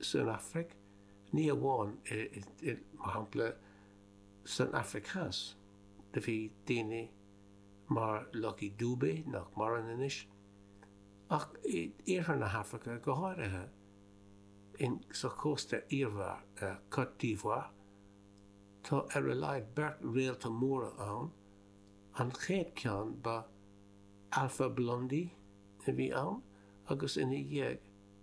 san Afraic, ní amháin i, mar shampla, san Afraic Theas, do bhí daoine mar Lucky Dube, nach maireann anois, ach i iarthar na hAfraice go háirithe, in, sa Chósta Eabhair, Côte d'Ivoire, tá ar a laghad beirt réalta móra ann, an chéad ceann ba Alpha Blondy a bhí ann agus ina dhiaidh,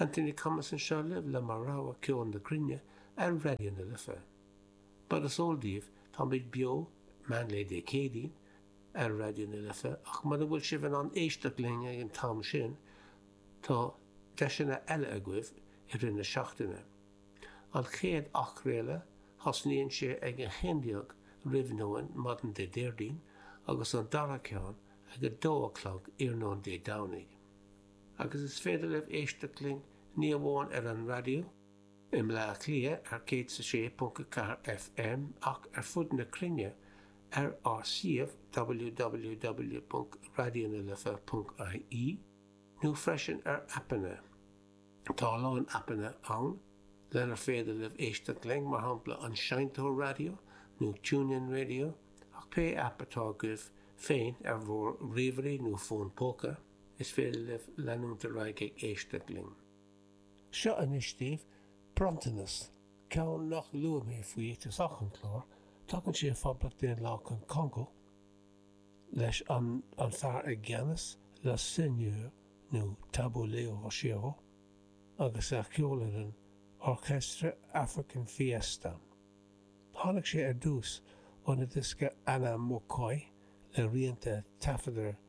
Anthony Cummins anseo libh le mo rogha ceoil na cruinne ar Raidió na Life. Mar is eol daoibh, táimid beo meán lae Dé Céadaoin ar Raidió na Life ach mura bhfuil sibh in ann éisteacht linn ag an t-am sin, tá deiseanna eile agaibh i rith na seachtaine. An chéad athchraoladh, thosnaíonn sé ag a haon déag roimh nóin maidin Dé Déardaoin agus an dara ceann ag a dó a chlog iarnóin Dé Domhnaigh. agus is féidir libh éisteacht linn ní amháin ar an raidió i mBleá Cliath ar 106.4 FM ach ar fud na cruinne ar ár suíomh www.raidionalife.ie nó freisin ar aipeanna, tá a lán aipeanna ann lenar féidir libh éisteacht linn, mar shampla An Seinnteoir Raidió nó TuneIn Radio, ach pé aip atá agaibh féin ar bhur ríomhairí nó fón póca. Is féidir libh leanúint ar aghaidh ag éisteacht linn. Seo anois daoibh bronntanas, ceann nach luaigh mé faoi ag tosach an clár, tagann sé ó Phoblacht Daonlathach an Congó leis an an fear i gceannas, le Seigneur nó Tabu Ley Rochereau, agus a cheolfhoireann Orchestre African Fiesta. Tháinig sé ar dtús ón diosca Ana Mokoy le rianta a taifeadadh